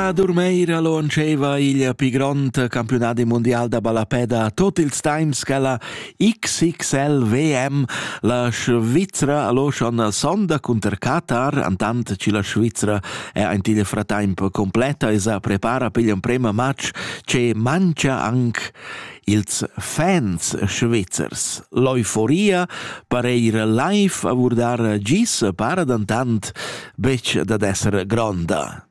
A Durmeira launscheva il pli grond campiunadi mondial da ballapè da tot ils temps quella XXL VM. La Svizra allo schon sonda cunter Qatar, antant ci la Svizra è ein til fratemp completa e sa prepara per il primo match che mangia anche ils fans svizzers. L'euforia pareir live a vurdar gis para dantant bec dad esser gronda.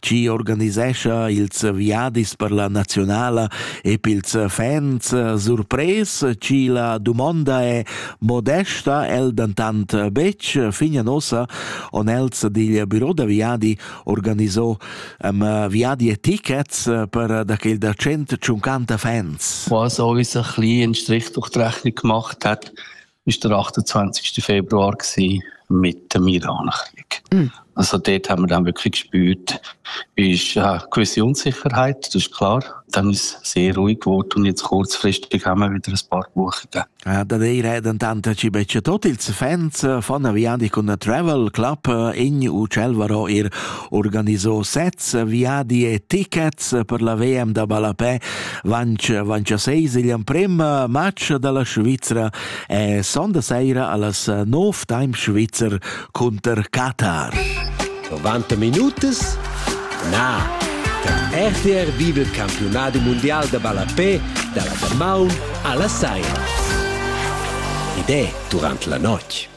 chi organisescha ils viadis per la nazionala e pils fans surpres chi la dumonda è modesta el dentant betg fin ossa on els digl büro da viadi organiso um, viadi e tickets per da quel da 150 fans. Was auch ein bisschen in Strich durch die Rechnung gemacht hat, ist der 28. Februar gewesen, mit dem Iran-Krieg. Mm. Also dort haben wir dann wirklich gespürt, ist eine gewisse Unsicherheit, das ist klar. Dann ist es sehr ruhig geworden und jetzt kurzfristig haben wir wieder ein paar Buchungen. Ja, da reden dann ci becce tot ils fans von Viandi con Travel Club in Ucelvaro ir organiso sets, viadi e tickets per la VM da ballapè vanch, vanch seis igl amprem match dalla Svizra e sonda seira allas nov time Svizzer cunter Qatar. 90 minutas? Na! RTR vive il campionato mondiale da ballapè dalla Damaun alla Saira. Ed è durante la notte.